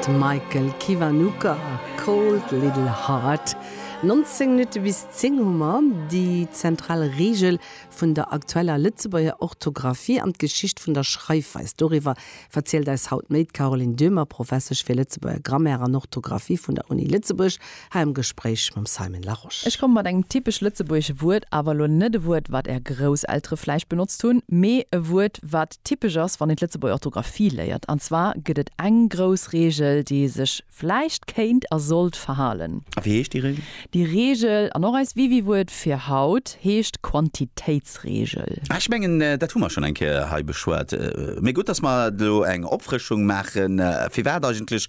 De Michael Kiwanuka, Cold Little Heart. 19 Minutte bis 10 hu mer. Déi zentral Reegel vun der aktueller Lëtzebuerger Orthografie an d'Geschicht vun der Schreifweis, doriwwer verzielt eis haut méi d'Caroline Döhmer, Professesch fir Lëtzebuerger Grammaire an Orthografie vun der Uni Lëtzebuerg. Hei am Gespréich mam Simon Larosche. Ech komme mat engem typesch lëtzebuergesche Wuert, awer elo net e Wuert, wat Är Grousseltere vläicht benotzt hunn, mee e Wuert, wat typesch ass, wann een d'Lëtzebuerger Orthografie léiert. An zwar gëtt et eng grouss Reegel, déi ee sech vläicht kéint a sollt verhalen. A wéi heescht déi Reegel? Déi Reegel, an och eist Wiwi-Wuert fir haut, heescht Quantitéitsreegel. Faustregel. Ah, ech mengen, dat hu mer schonn eng Kéier hei beschwat. Mee gutt, dass mer elo eng Opfrëschung maachen. Firwat eigentlech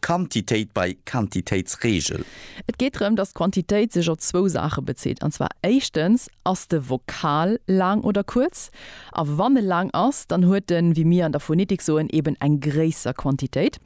Quantitéit bei Quantitéitsregel? Et geet drëm, dass d'Quantitéit sech op zwou Saache bezitt. An zwar éischtens, Ass de Vokal laang oder kuerz? A wann e laang ass, dann huet en, wéi mir an der Phonetik soen, eben eng gréisser Quantitéit.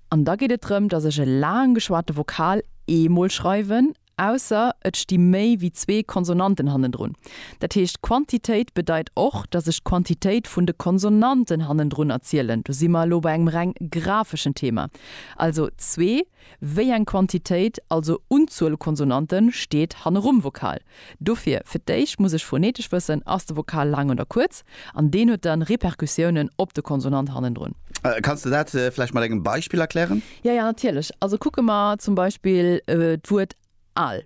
An da geet et drëm, dass ech e laang geschwate Vokal eemol schreiwen Ausser et sti méi wéi zwee Konsonanten hannendrun. Dat heescht, Quantitéit bedeit och, datt ech d'Quantitéit vun de Konsonanten hannendrun erzielen. Do si mer elo bei engem reng grafeschen Thema. Also zwee, wéi eng Quantitéit, also Unzuel Konsonanten, steet hannerum Vokal. Dofir, fir d'éischt muss ech phoneetesch wëssen, ass de Vokal laang oder kuerz? An deen huet dann Repercussiounen op de Konsonant hannendrun. Kanns de dat vläicht mat engem Beispill erklären? Jo, jo, natierlech. Also kucke mer zum Beispill d'Wuert al.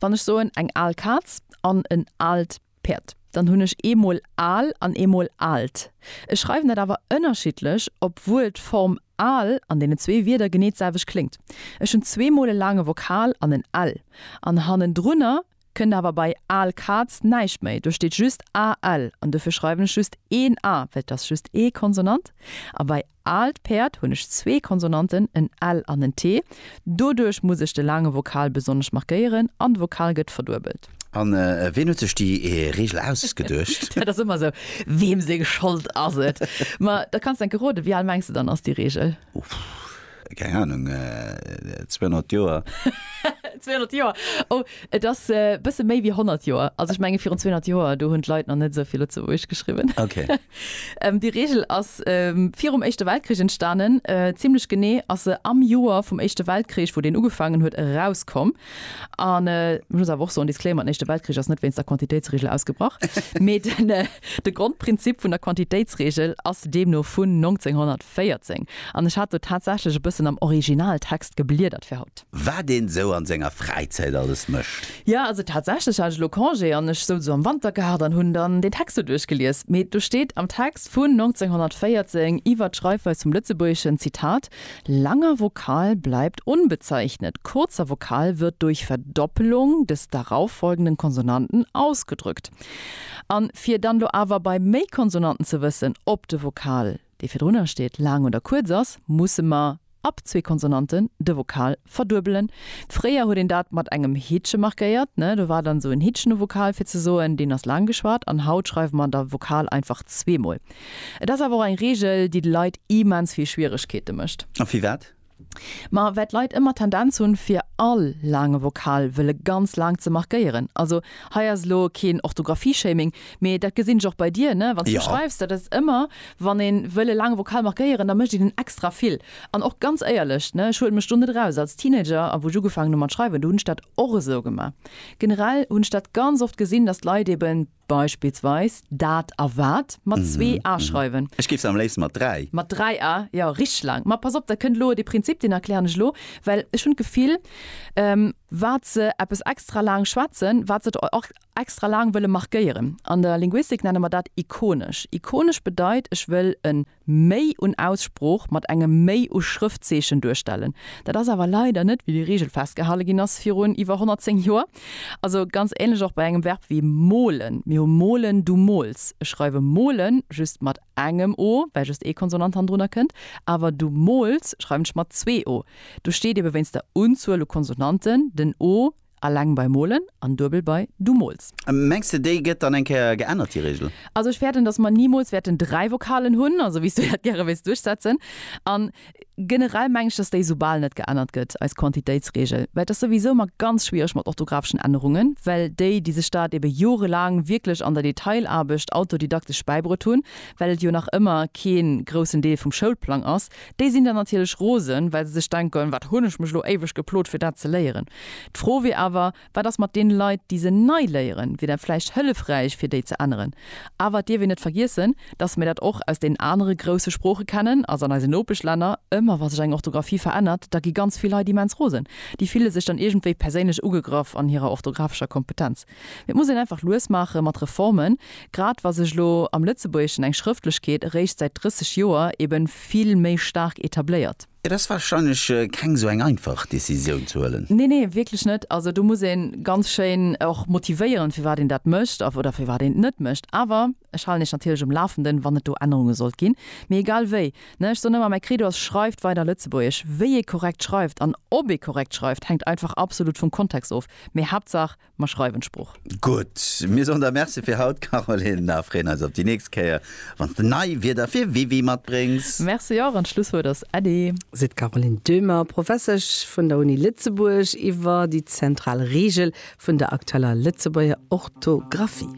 Wann ech soen eng al Kaz an en aalt Päerd, dann hunn ech eemol al an eemol aalt. Ech schreiwen dat awer ënnerschiddlech, obwuel d'Form al an deenen zwee Wierder genee d'selwecht kléngt. Ech hunn zweemol e laange Vokal an en l an hannendrunner Kënnt awer bei Aal Kaatz näischt méi, do steet just AL an dofir schreiwen ech just een A, well et ass just ee Konsonant. A bei Aalt Päerd hunn ech zwee Konsonanten, en L an en T. Doduerch muss ech de laange Vokal besonnesch markéieren an de Vokal gëtt verduebelt. A wien huet sech déi Reegel ausgeduecht? Dat ass ëmmer esou, weem seng Schold ass et? Ma da kanns de enke roden. Wéi al mengs de dann ass déi Reegel? Uff, keng Ahnung, 200 Joer. 200 Joer? Oh, et ass e bësse méi wéi 100 Joer. Also ech menge virun 200 Joer, do hunn d'Leit nach net esou vill Lëtzebuergesch geschriwwen. Ok. Déi Reegel ass virum Éischte Weltkrich entstanen. Zimmlech genee ass se am Joer vum Éischte Weltkrich, wou deen ugefaangen huet, erauskomm. An ech muss awer och soen, Disclaimer, den Éischte Weltkrich ass net wéinst der Quantitéitsreegel ausgebrach, mee de Grondprinzip vun der Quantitéitsreegel ass deemno vun 1914. 14, an ech hat do tatsächlech e bëssen am Originaltext gebliedert fir haut. Wat een esou an senger Fräizäit alles mécht. Jo, also tatsächlech hat ech elo Congé an ech souz elo am Wantergaart an hunn dann deen Text do duerchgelies. Mee do steet am Text vun 1914 iwwert d'Schreifweis vum Lëtzebuergeschen, Zitat, langer Vokal bleibt unbezeichnet, kurzer Vokal wird durch Verdoppelung des darauffolgenden Konsonanten ausgedrückt. An fir dann elo awer bei méi Konsonanten ze wëssen, ob de Vokal. dee virdrunner steet, laang oder kuerz ass, musse mer ab zwee Konsonanten de Vokal verduebelen. Fréier huet een dat mat engem Hittche markéiert, ne, do war dann esou en Hittchen um Vokal, fir ze soen, deen ass laang geschwat. An haut schreiwe mer da Vokal einfach zweemol. Et ass awer och eng Reegel, déi de Leit immens vill Schwieregkeete mécht. A firwat Ma well d'Leit ëmmer d'Tendenz hunn, fir all laange Vokal wëlle ganz laang ze markéieren, also hei ass elo keen Orthografie-Shaming, mee dat gesinn ech och bei dir, ne, wann s du schreifs, dat ass ëmmer, wann ee wëll e laange Vokal markéieren, da mécht een en extra vill. An och ganz éierlech, ne, ech huelen mech do net eraus, als Teenager a wou ech ugefaangen hu mat schreiwen, do hunn ech dat och esou gemaach. Generell hunn ech dat ganz oft gesinn, datt d'Leit eben Beispillsweis dat a wat mat zwee a schreiwen. Ech géif se am léifste mat dräi. Mat dräi a, jo, richteg laang. Ma pass op, dat kënnt elo. Dee Prinzip, deen erklären ech elo, well ech hunn d'Gefill, wat se eppes extra laang schwätzen, wat se der och extra laang wëlle markéieren. An der Linguistik nenne mer dat ikonesch. Ikonesch bedeit, ech wëll en Méi un Aussprooch mat engem Méi u Schrëftzeechen duerstellen. Dat ass awer leider net wéi déi Reegel festgehale ginn ass virun iwwer 110 Joer. Also ganz ähnlech och bei engem Verb wéi molen. Mir hu molen, du mols. Ech schreiwe molen just mat engem o, well just ee Konsonant hannendrunner kënnt, awer du mols schreiwen ech mat zwee o. Do steet ebe wéinst der Unzuel u Konsonanten den o Alleng bei molen an duebel bei du mols. Mengs de déi gëtt dann eng Kéier geännert déi Regel? Also ech fäerten, dass mer nimols wäerten dräi Vokalen hunn, also wéi s du dat gäre wéils duerchsetzen. An generell meng ech, dass déi soubal net geännert gëtt, eis Quantitéitsregel, well et ass souwisou ëmmer ganz schwiereg mat orthographischen Ännerungen, well déi déi sech dat ebe jorelaang wierklech an der Detailaarbecht autodidaktesch bäibruet hunn, well et jo nach ëmmer kee groussen Deel vum Schoulplang ass, Déi sinn dann natierlech rosen, well se sech denken, Wat hunn ech mech elo éiweg geplot, fir dat ze léieren? D'Fro wier awer, Wat ass mat deene Leit, déi se nei léieren? Wier dat vläicht hëllefräich, fir déi ze änneren? Awer et dierf een net vergiessen, dass mir dat och aus deenen anere grousse Sprooche kennen, also an eisen Nopeschlänner. Ëmmer wa sech eng Orthografie verännert, da gi ganz vill Leit immens rosen. Déi fille sech dann iergendwéi perséinlech ugegraff an hirer orthografescher Kompetenz. Et muss een einfach lues maache mat Reformen, grad wa sech elo am Lëtzebuergeschen eng Schrëftlechkeet eréischt säit 30 Joer ebe vill méi staark etabléiert. Et ass warscheinlech keng esou eng einfach Decisioun ze huelen. Nee, nee, wierklech net. Also do muss ee ganz schéin och motivéieren, firwat een dat mécht oder firwat een et net mécht. Awer. Ech halen iech natierlech um Lafenden, wann et do Ännerunge sollt ginn. Mee egal wéi, ne, ech soen ëmmer, mäi Credo ass, Schreift weider Lëtzebuergesch. Wéi ee korrekt schreift an ob ee korrekt schreift, hänkt einfach absolut vum Kontext of. Mee Haaptsaach, mer schreiwen d'Sprooch. Gutt, mir soen der Merci fir haut, Caroline, a freeën eis op déi nächst Kéier, wann s de nei Wierder fir Wiwi matbréngs. Merci och an d'Schlusswuert ass Äddi. Seet d'Caroline Döhmer, Professesch vun der Uni Lëtzebuerg, iwwer déi zentral Reegel vun der aktueller Lëtzebuerger Orthografie.